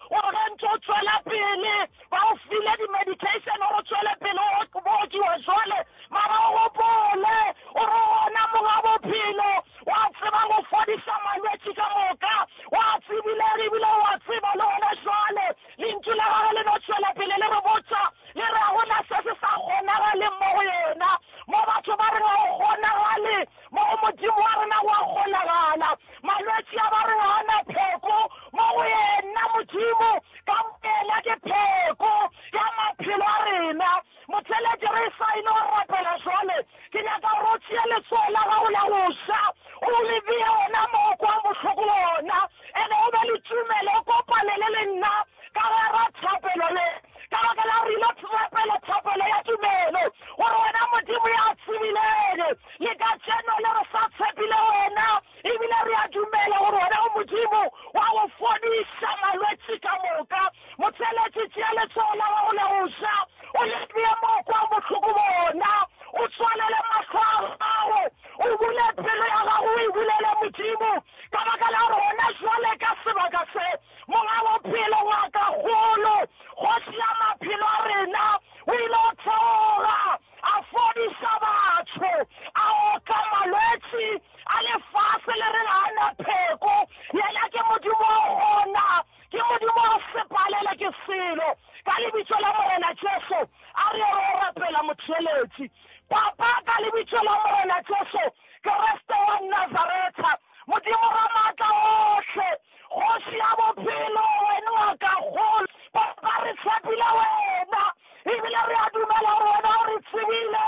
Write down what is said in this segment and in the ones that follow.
Gore ge ntse o tšwela pele, ba o file di-medication gore o tšwele pele o bookiwa jwale, mara o gopole gore gona Monga Bophelo wa tseba go fodisa malwetši ka moka. O a tsebile ere ebile o a tseba le gona jwale. Lentšu la Gagwe le no tšwela pele le re botša, le re ga go na se se sa kgonagaleng mo go Yena. Mo batho ba reng ga go kgonagale, mo go Modimo wa rena go a kgonagala. Malwetši a ba re ga a na pheko, mo go Yena Modimo ka boyena ke pheko ya maphelo a rena. Motheletši, re e sa ile go rapela jwale, ke nyaka gore o tšee letsogo la gago la go ja, o le bee gona mo o kwang bohloko gona, ene o be le tumelo, o kopanele le nna. Ka gare thapelo ye, ka baka la gore re ile thapelo, thapelo ya tumelo, gore wena Modimo ya tshebileng, le katšeno le re sa tshepile wena, ebile re a dumela gore wena o Modimo wa go fodiša malwetši ka moka. Motšeletši, tšea letsogo la gago la go ja, o le bee mo o kwago bohloko bona, o tswalele mahlo a gago, o bule pelo ya gago o e bulele Modimo, ka baka la gore gona bjale ka sebaka se, Monga bophelo wa ka golo, Kgoši ya maphelo a rena, o ile o tsoga, a fodiša batho, a oka malwetši a lefase. Le reng ga a na pheko? Yena ke Modimo o gona, ke Modimo wa sepalele, ke selo. Ka Lebitso la Morena Jesu, a re ro rapela Motheeletši. Papa, ka Lebitso la Morena Jesu Kriste wa Nazaretha, Modimo Ramaatla ohle, Kgoši ya bophelo, Wena wa ka kgolo, Papa, re tshepile Wena, ebile re a dumela gore Wena o re tsebile,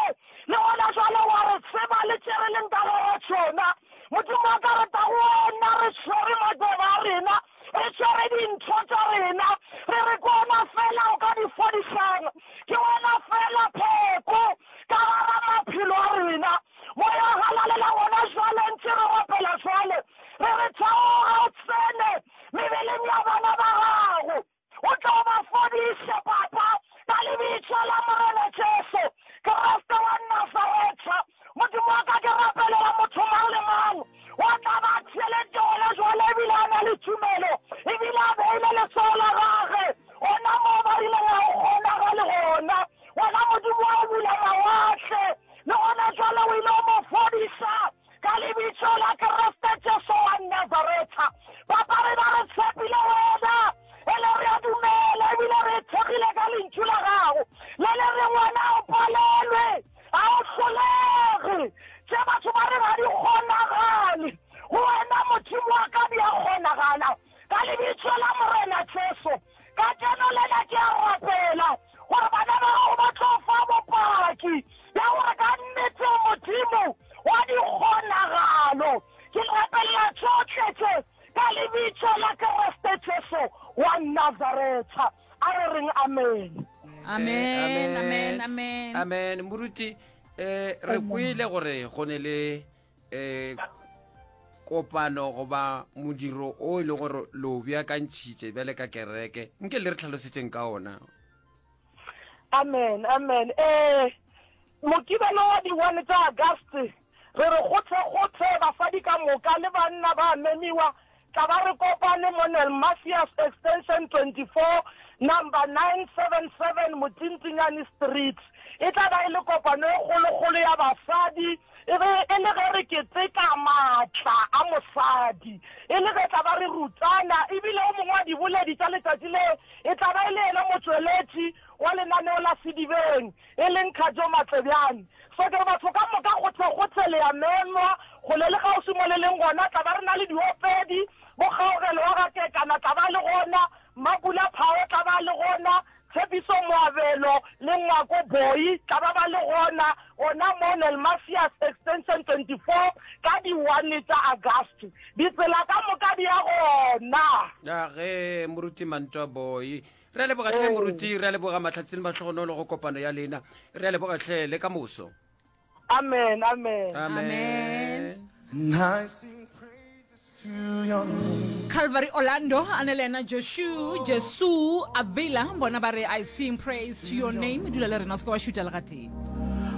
le gona jwale wa re tseba le tše re leng ka gare tšona. Modimo wa ka, re tla go Wena re tshwere matseba a rena, re tshwere dintho tša rena, re re ke Wena fela o ka di fodišang, ke Wena fela pheko ka gara maphelo a rena. Moya o galalela gona jwale, ntše re opela jwale, re re, Theoga o tsene mebeleng ya bana ba Gago. O tla o ba fodiše, Papa, ka Lebitso la Morena Jesu Kriste wa Nazaretha. Modimo wa ka, ke rapelela motho mang le mang o a tla ba a theeletše gona jwale, ebile a na le tumelo, ebile a beile letsogo la gage gona moo ba rileng ga go kgonagale gona. Wena Modimo wa go bula mawatle, Le gona bjale o ile o mo fodiša ka lebitso la Kriste Jesu wa Nazaretha. Papa, re ba re tshepile wena, e le re a dumela ebile re thekgile ka lentšu la gago le le reng wena o palelwe ga o hlolege tše batho ba re ga di kgonagale go wena modimo wa ka di a kgonagala ka lebitso la morena jesu Ka tseno le na ke a rapela gore bana ba gago ba tlo fa bopaki bja gore ka nnete o Modimo wa dikgonagalo. Ke rapelela tšohle tše ka Lebitso la Kriste Jesu wa Nazaretha. A re reng amen. Amen, amen, amen. Amen. Moruti, eh, re kwele gore go ne le eh kopano goba modiro o e leng gore lo beakantšhitše bjale ka kereke nke le re tlhalosetseng ka ona amen amen eh mokibelo wa di-one tsa auguste re re gotlhegothe basadi ka moka le banna ba memiwa Tla ba re kopane mo Nel Macias Extension 24, Number 977 Motintinyane Street. E tla ba e le kopano e kgolokgolo ya basadi, e be e le ge re keteka maatla a mosadi, e le ge tla ba re rutana, e bile o mongwe wa diboledi tša letšatši le e tla ba e le yena motšweletši wa lenaneo la Sedibeng. e leng Khajo Matlebjane. Soccer batho ka moka kgothekgothe le ya menwa go le le kgauswi mo le leng gona tla ba re na le diopedi bo Kgaogelo wa ga Kekana tla ba le gona Mapula Phao tla ba le gona Tshepiso Moabelo le Ngwako Boyi tla ba ba le gona gona mo Nelmasius Extension 24 ka di one tša Agasti ditsela ka moka di ya gona. Na ge Moruti Mantwa Boyi re a leboga tlhe moruti re a leboga matlhatsini matlhogonolo go kopano ya lena re a leboga tlhe le ka moso amen amen amen calvary orlando a ne le ena josu jesu avila bona ba re i sing praise to your name dula le rena o se ka wa šuta legatee